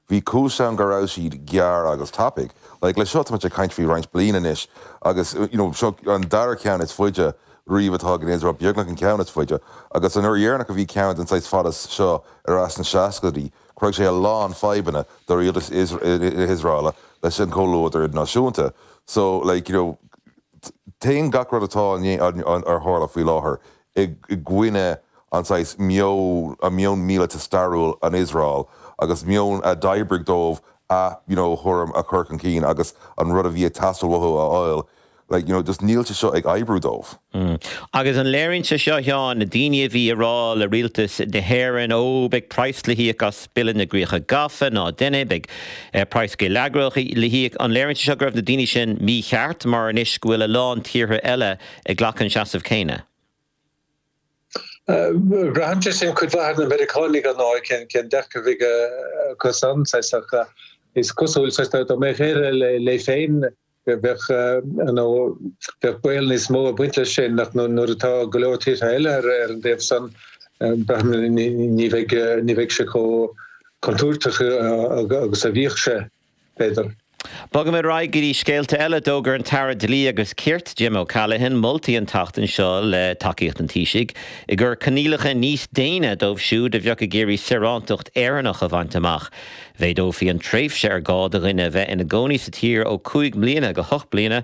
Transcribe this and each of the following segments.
Bhí cúis ann go raibh siad gearr agus tapaidh. Like, le seo, táimid ag caint faoi roinnt bliain anois agus, you know, seo an dara ceann is faide riamh atá ag an Iosrael, beagnach an ceann is faide. Agus an uair dheireanach a bhí ceann den saghas fada seo ar ais sna seascaidí, chruthaigh sé a lán fadhbanna do rialtas na hIosraele leis an chomhluadar idirnáisiúnta. So, like, you know, téann gach rud atá ag tarlú faoi láthair i gcoinne an saghas meon míleata stairiúil an Iosrael agus meon a d'oibrigh dóibh a you know thuairim a chur chun cinn agus an rud a bhí ag teastáil uathu a fháil like you know just níl sé seo ag oibriú dóibh. Mm. Agus an léiríonn sé seo, a Sheáin, na daoine a bhí ag rá le rialtas na hÉireann, ó, beidh praghas le híoc as Bille na gCríocha Gafa, ná dein é, beidh praghas geilleagrach le híoc, an léiríonn sé seo go raibh na daoine sin mícheart mar anois go bhfuil a lán tíortha eile ag glacadh an seasamh céanna. Braitheann sé sin cuid mhaith ar na Meiriceánaigh ar ndóigh, cén dearcadh a bheidh acusan. Is cosúil dá mbeadh Éire léi féin go mbeadh baol níos mó ag baint leis sin ach nuair atá go leor tíortha eile ar an dtaobh san ní bheidh sé chomh contúirteach agus a bhíodh sé. b'fhéidir. Bogaimid ar aghaidh go dtí scéalta eile. D'fhógair an tAire Dlí agus Cirt, Jim O'Callaghan, moltaí an tseachtain seo, le tacaíocht an Taoisigh, ag cur coinníollacha níos déine dóibh siúd a bheadh ag iarraidh saorántacht Éireannach a bhaint amach. Mhéadófaí an tréimhse ar gá do dhuine a bheith ina gcónaí sa tír ó cúig mbliana go hocht bliana.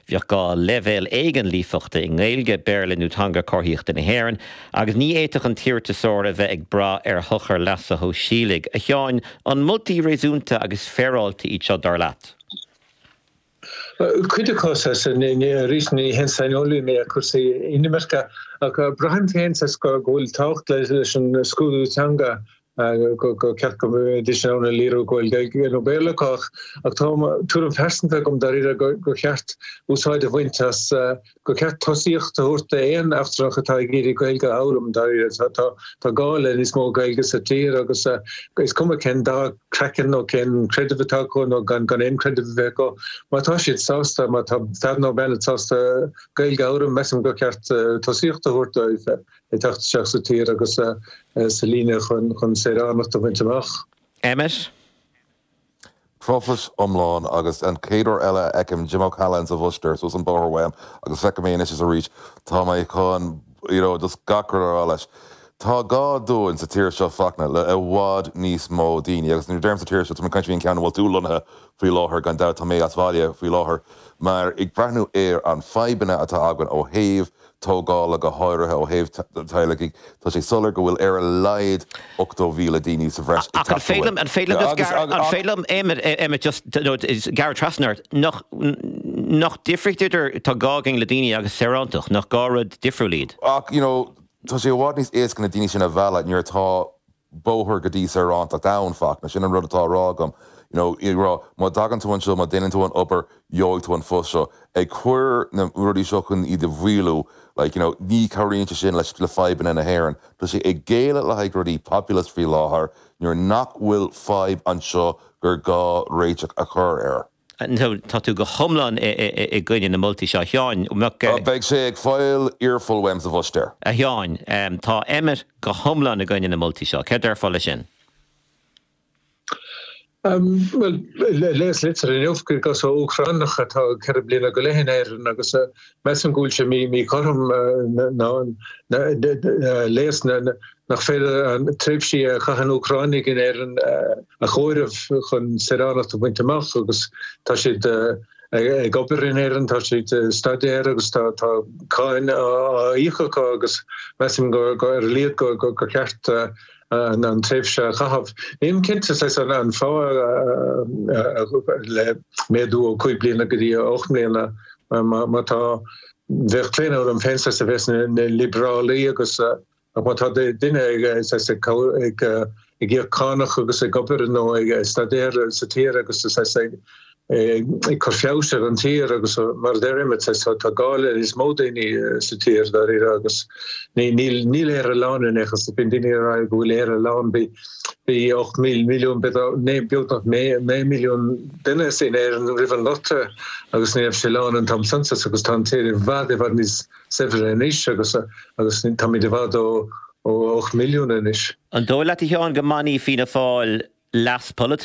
Bheadh gá leibhéal éigin líofachta i nGaeilge, Béarla nó Teanga Comharthaíochta na hÉireann, agus ní fhéadfadh an t-iarratasóir a bheith ag brath ar shochar leasa shóisialaigh. A Sheáin, an moltaí réasúnta agus féaráilte iad seo, dar leat? Cuid acu, arís ní haon saineolaí mé ar cúrsaí inimirce, ach braithim féin go bhfuil tábhacht leis an scrúdú teanga gur cheart go mbeidís in ann a léiriú go bhfuil Gaeilge nó Béarla acu ach tá tuairim phearsanta agam dáiríre gur cheart úsáid a bhaint as gur cheart tosaíocht a thabhairt d'aon eachtrannach atá ag iarraidh Gaeilge a fhoghlaim dáiríre tá gá le níos mó Gaeilge sa tír agus is cuma cén dath craiceann nó cén creideamh atá acu nó gan gan aon creideamh a bheith acu má tá siad sásta má tá fear nó bean sásta Gaeilge a fhoghlaim measaim gur cheart tosaíocht a thabhairt dóibh ag teacht isteach sa tír agus sa líne chun saoránacht a bhaint amach. Emmet. Truflais iomlán, agus an chéad uair eile a fheicim Jim O'Callaghan sa bhúistéir suas an bóthar uaim, agus feicim é anois is arís, tá mé chun, you know, just gach rud a rá leis. Tá gá dúinn sa tír seo Fachtna le i bhfad níos mó daoine, agus nuair a deirim sa tír seo, tá mé ag caint faoi an ceann a bhfuil tú lonnaithe faoi láthair, gan dabht, tá mé as bhaile faoi láthair, mar ag breathnú ar an fadhbanna atá againn ó thaobh, tógála, go háirithe ó thaobh teaghlaigh, tá sé soiléir go bhfuil ar a laghad 80,000 daoine sa bhreis i bhfeidhm. Agus ach you know tá sé i bhfad níos éasca na daoine sin a mhealladh nuair atá bóthar go dtí saorántacht ann ach. Sin an rud atá a rá agam. You know, ag rá má dtagann tú anseo, má deineann tú an obair, gheobhaidh tú an phost seo. Ag cur na rudaí seo chun iad a mhaolú, like, you know, ní chabhraíonn sé sin le fadhbanna na hÉireann. Tá sé ag géilleadh le haghaidh rudaí populist faoi láthair nuair nach bhfuil fadhb anseo gur gá réiteach a chur air. So tá tú go hiomlán i gcoinne na moltaí seo, a Sheáin. Beidh sé ag fail earful uaim sa bpost air. A Sheáin, tá Emmet go hiomlán i gcoinne na moltaí seo. Céard déarfá leis sin? Bhuel, léas litir inniu ó Úcránach atá ceithre bliana go leith in Éirinn agus a Measaim go bhfuil sé míchothrom ar a laghad nach féidir an tréimhse a chaitheann Úcránaigh in Éirinn a chomhaireamh chun saoránacht a bhaint amach agus tá siad ag obair in Éirinn, tá siad ag staidéar agus tá cáin á íoc acu agus measaim ar a laghad gur cheart an tréimhse a chaitheamh. Nílim cinnte cad é an fáth le méadú ó 5 bliana go dtí 8 mbliana má tá bheadh claonadh orm féin a bheith níos liobrálaí agus ach má tá duine ag íoc cánach agus ag obair nó ag staidéar sa tír agus ag cur feabhais ar an tír agus mar a deir Emmet tá gá le níos mó daoine sa tír dáiríre agus níl Éire lán in aon chor so bíonn daoine ag rá go bhfuil Éire lán bhí 8 milliún beagnach 9 milliún duine in Éirinn roimh an nGorta agus ní raibh sé lán an t-am san agus tá an tír i bhfad i bhfad níos saibhre anois agus táimid i bhfad ó 8 milliún anois. An dóigh leat a Sheáin go mbainfidh Fianna Fáil leas polaitiúil